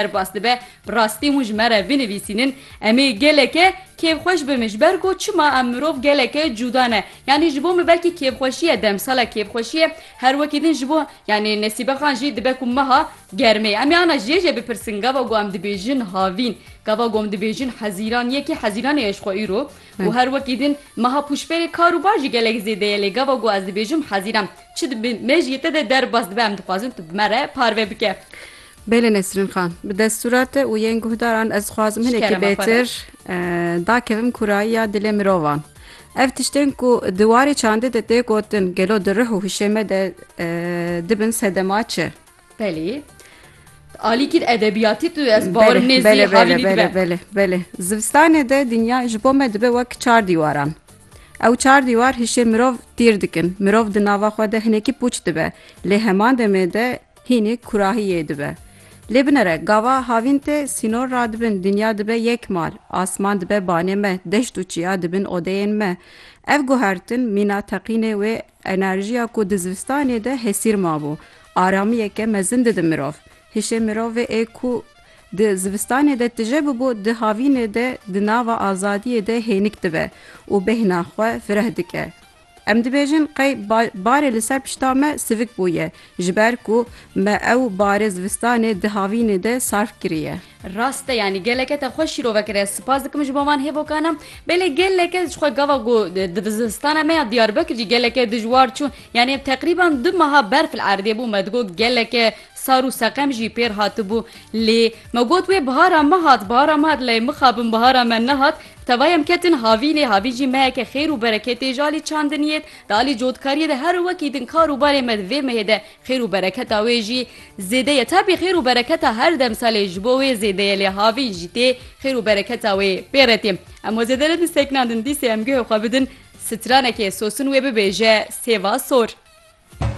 Derbas dibe, bi rastî hûn ji me re binivîsînin, em ê geleke kêfxweş bim ji ber ku çima em mirov geleke cuda ne. Yanî ji bo min belkî kêfxweşî ye demsala kêfxweşî ye her wekî din ji bo yanî Nesîbe Xan jî dibe ku meha germê. Em ê ana jê jê bipirsin gava ku em dibêjin havîn, gava ku em dibêjin hezîran yê kî hezîranê ye ji xwe îro û her wekî din meha pûşberê kar û bar jî gelek zêde ye lê gava ku ez dibêjim hezîran çi dibe me jî te de derbas dibe em dixwazin tu bi me re parve bike. Bêle Nesrin Xan, bi destûra te û yên guhdaran ez dixwazim hinekî bêtir dakevim kurayiya dilê mirovan. Ev tiştên ku di warê çandê de tê gotin gelo di rih û hişê me de dibin sedema çi? Belê. Alîkî edebiyatî tu ez bawerim nê zî havî dibe. Belê, belê. Zivistanê de dinya ji bo me dibe wek çar dîwaran. Ew çar dîwar hişê mirov tîr dikin. Mirov di nava xwe de hinekî pûç dibe. Lê heman demê de Hînî kurahî yê dibe. Lê binere gava havîn tê sînor ra dibin dinya dibe yek mal, asman dibe banê me, deşt û çiya dibin odeyên me. Ev guhertin mîna teqînê wê enerjiya ku di zivistanê de hesîr mabû, aramiyeke mezin dide mirov. Hişê mirovê ê ku di zivistanê de tije bibû di havînê de di nava azadiyê de hênik dibe û bêhna xwe fireh dike. Em dibêjin qey barê li ser pişta me sivik bûye ji ber ku me ew barê zivistanê di havînê de sarf kiriye. Rast e yanî geleke te xweş şîrove kiriye. Sipas dikim ji bo van hêvokan e. Belê geleke jixwe gava ku di vizistana me ya Diyarbekir jî geleke dijwar çû. Yanî ev teqrîban du meha berf li erdê bû. Me digot geleke sar û seqem jî pêr hatibû. Lê me got wê bihara me hat, bihara me hat lê mixabin bihara me nehat. Tevay em ketin havî lê havî jî meheke xêr û bereketê ji alî çandinî yê, di alî cotkarîyê de her wekî din kar û barê me di vê mehê de xêr û bereketa wê jî zêde ye tevî xêr û bereketa her demsalê ji bo wê zêde ye lê havî jî tê xêr û bereketa wê pê re tê em we zêde nedin sekna din dîsê em guhê xwe bidin stranekê sosin wê bibêje sêva sor.